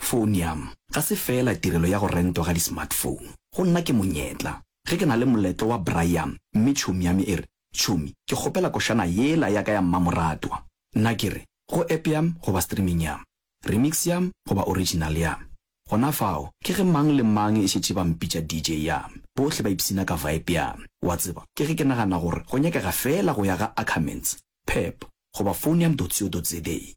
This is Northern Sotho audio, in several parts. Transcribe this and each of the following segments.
Phonium ga se feela tirelo ya go rentwa ga di-smartphone. Go nna ke monyetla ge ke na le moletlo wa braaiam mme tšhomi ya me e re, Tšhomi, ke kgopela košana yela ya ka ya mmamoratwa. Nna ke re, Go app ya me goba streaming ya me, remix ya me goba original ya me. Gona fao ke ge mang le mang e šetše ba mpitša DJ ya me. Bohle ba ipshina ka vibe ya me. Wa tseba, ke ge ke nagana gore go nyakega feela go ya ga Ackermans, Pep goba Phonium.co.za.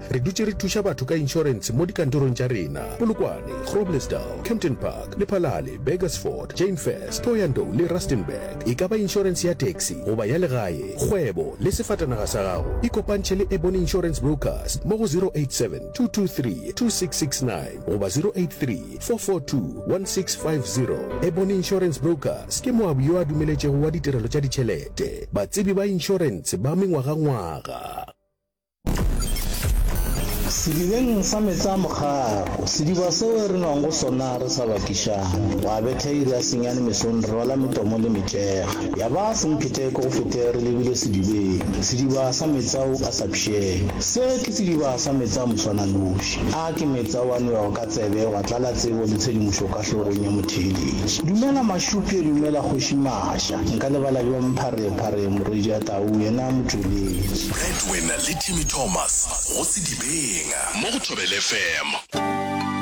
Re dutše re thuša batho ka inšorense mo dikantorong tša rena, Polokwane, Groblersdal, Kempton Park, Lephalale, Burgersfort, Jane First, Thohoyandou le Rustenburg. E ka ba inšorense ya taxi goba ya legae, kgwebo le sefatanaga sa gago. Ikopantšhe le Ebony Insurance Brokers mo go 0872232669 goba 0834421650. Ebony Insurance Brokers ke moabi yo a dumeletšego wa ditirelo tša ditšhelete, batsebi ba inšorense ba mengwagangwaga. Sedibeng sa meetse a mogaro, sediba seo re nwang go sona re sa bakišane, gwa betha iri ya senyane mesong re rwala metomo le metšega. Ya ba sempheteko go fete re lebile sedibeng, sediba sa meetse ao a sa pšhene. Se ke sediba sa meetse a moswananoši. A ke meetse ao a nwewago ka tsebe gwa tlala tsebo le tshedimošo ka hlogong ya motheeletši. Dumela Mašupje, dumela Kgoši Maša. Nka lebala bjang Pharephare, Morwedia Tau, yena motšweletši? Wena le Jimmy Thomas go Sedibeng mo go Thobela FM.